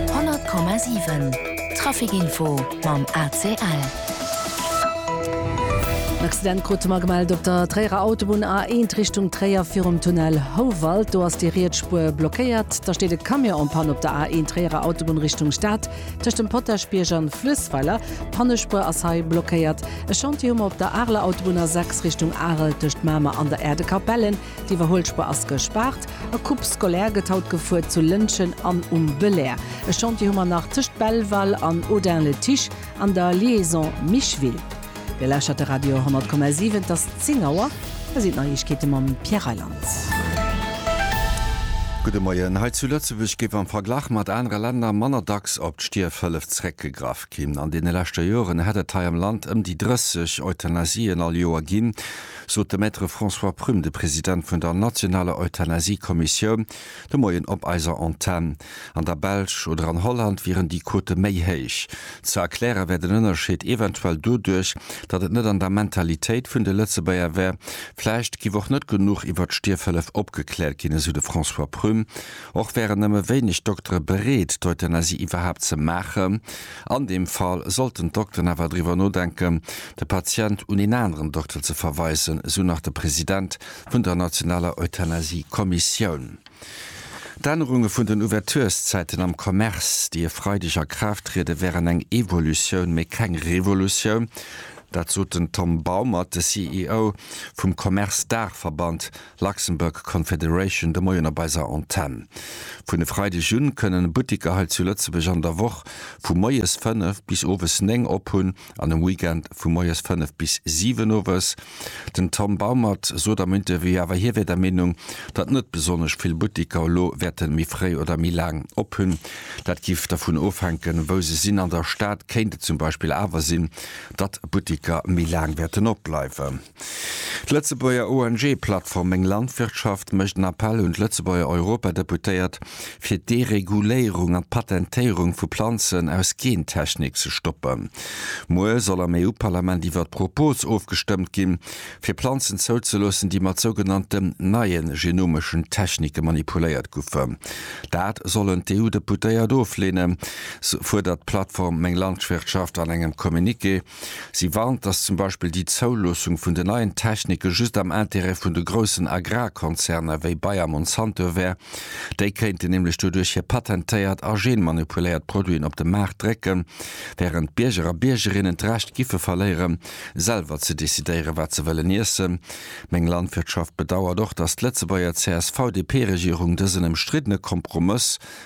100,7 Trafic Info mam ACL. En Accident krute mer gemellt op der Tréierer Autobunn A1 Richtung Tréier virum Tunnel Houwald. Do ass déi riets Spuer blockéiert. Da steet e Camion en Panne op der A1 Tréierer Autobunn Richtung Stad tëscht dem Potaschbierg an Fluessweiler. D'Pannespuer ass hei blockéiert. E Chantier hu mer op der Areler Autobunn A6 Richtung Arel tëscht Mamer an der Aire de Capellen. D'Iwwerholspur ass gespaart. E Coupe scolaire gëtt haut gefuer zu Lëntgen an um Belair. E Chantier hu mer nach tëscht Belval an Audun-le-Tiche an der Liaison Micheville. Dir lauschtert de Radio 100,7. Et ass 10 Auer. Hei sinn d'Neiegkeete mam Pierre Reyland. Gudde Moien. Hei zu Lëtzebuerg géif am Verglach mat anere Länner manner dacks op d'Stierfhëllef zeréckgegraff ginn. An deene leschte Joren hätt et hei am Land ëm déi 30 Euthanasien all Joer ginn. sot de Maître François Prüm, de President vun der nationaler Euthanasie-Kommissioun, de Moien op eiser Antenn. An der Belsch oder an Holland wieren déi Quote méi héich. Ze erkläre wär den Ënnerscheed eventuell doduerch, datt et net an der Mentalitéit vun de Lëtzebuerger wär. Vläicht giff och net genuch iwwert d'Stierfhëllef opgekläert ginn, esou de François Prüm. Och wären nëmme wéineg Doktere bereet, d'Euthanasie iwwerhaapt ze maachen. An deem Fall sollten d'Dokteren awer driwwer nodenken, de Patient un een aneren Dokter ze verweisen, esou nach de President vun der nationaler Euthanasie-Kommissioun. D'Ännerunge vun den Ouvertureszäiten am Commerce, déi e Freideg a Kraaft triede, wären eng Evolutioun, mee keng Revolutioun. Dat sot den Tom Baumert, de CEO vum Commerce-Daachverband, Luxembourg Confederation de Moien op eiser Antenn. Vun e Freideg un kënnen Buttiker hei zu Lëtzebuerg an der Woch vu moies 5 bis owes 9 op hunn an um Weekend vu moies 5 bis 7 owes. Den Tom Baumert sot am Interview awer hie wär der Meenung, datt net besonnesch vill Buttiker elo wäerte méi fréi oder méi laang op hunn. Dat giff dervun ofhänken, wou se sinn. An der Stad kéint et zum Beispill awer sinn, datt Buttiker méi laang wäerten opbleiwen. D'Lëtzebuerger ONG-Plattform Meng Landwirtschaft mécht en Appell un d'Lëtzebuerger Europadeputéiert, fir d'Dereguléierung an d'Patentéierung vu Planzen aus Gentechnik ze stoppen. Muer soll am EU-Parlament iwwert d'Propos ofgestëmmt ginn, fir Planzen zouzeloossen, déi mat sougenannten neie genomeschen Technike manipuléiert goufen. Dat sollen d'EU-Deputéiert ofleenen, fuerdert d'Plattform Meng Landwirtschaft an engem Communiqué. Si warnt, datt zum Beispill déi Zouloossung vun den neien Technike just am Intérêt vun de groussen Agrarkonzerner wéi Bayer Monsanto wär. Déi kéinten nämlech doduerch hir patentéiert a genmanipuléiert Produiten op de Maart drécken, wärend d'Bierger a Biergerinnen d'Recht giffe verléieren, selwer ze decidéieren, wat se wëllen iessen. Meng Landwirtschaft bedauert och, datt d'Lëtzebuerger CSV-DP-Regierung dësen ëmstriddene Kompromëss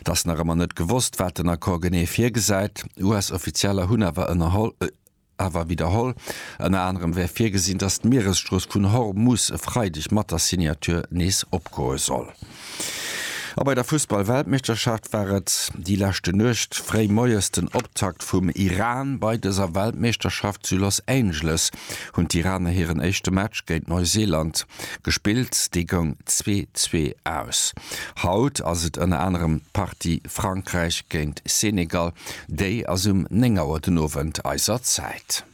Et ass nach ëmmer net gewosst, wat den Accord genee virgesäit. US-Offizieller hunn awer ënnerholl, awer widderholl, ënner anerem wär virgesinn, datt d'Mieresstrooss vun Hormus e Freideg mat der Signature nees opgoe soll. A bei der Fussball-Weltmeeschterschaft war et déi leschte Nuecht fréi moies den Optakt vum Iran. Bei dëser Weltmeeschterschaft zu Los Angeles hunn d'Iraner hiren éischte Match géint Neuseeland. Gespillt déi goung zwee zwee aus. Haut ass et ënner anerem d'Partie Frankräich géint Senegal, déi ass um 9 Auer den Owend eiser Zäit.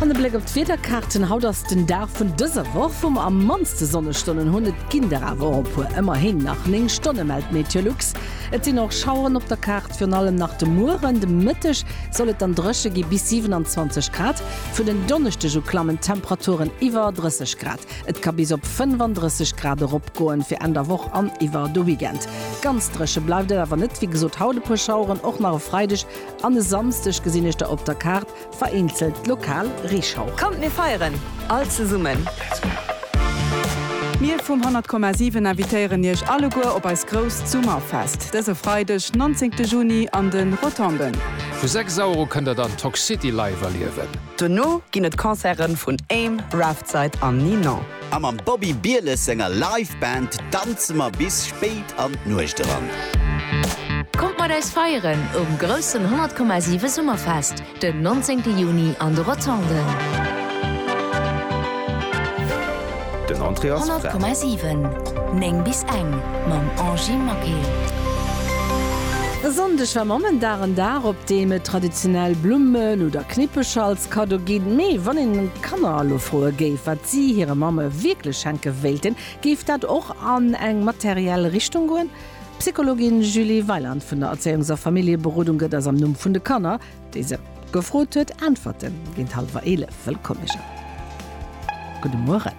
An e Bléck op d'Wiederkaarten, Haut ass den Dag vun dëser Woch wou mer am mannste Sonnestonnen hunn, et ginn der awer och e puer, ëmmerhin nach 9 Stonne mellt Meteolux. Et sinn och Schaueren op der Kaart. Virun allem nach de Mueren, de Mëtteg soll et dann dréche gi bis 27 Grad. Vun en Donneschdeg u klammen d'Temperaturen iwwer 30 Grad. Et ka bis op 35 Grad eropgoen. Fir Enn der Woch an iwwer de Weekend ganz dréche bleift et awer net. Wéi gesot, haut e puer Schaueren, och nach e Freideg an e Samsdeg gesinn ech da op der Kaart. Vereenzelt lokal Reeschauch. Kommt mir feieren all zesummen! Mir vum 100,7 invitéieren Iech alleguer op eis grousst Summerfest dëse Freideg 19 Juni an de Rotonden. Vu 6 Auer u kënnt der dann Toxcity live erliewen. Dono ginn et Concerte vun Aim, Raftside an Ninon. A mam Bobby Bieles senger Live Band danze mer bis spéit an d'Nuecht eran. Kommt mat eis feieren um groussen 100,7 Summerfest den 19 Juni an de Rotonden. 100,7 9 bis eng mam Angy Maquet. E Sonndeg war Mammendag, en Dag op deem et traditionell Blummen oder Knippecher als Kaddo ginn, mee wann een. Kanner elo froe géif, wat si hire Mamme wierklech schenke wéilten, géif dat och an eng materiell Richtung goen? D'Psychologin Julie Weiland vun der Erzéiungs a Familljeberodung gëtt eis am Numm vun de Kanner, déi se gefrot huet, Äntwerten. Géint hallwer 11 wëllkomm ech an. Gudde Mueren.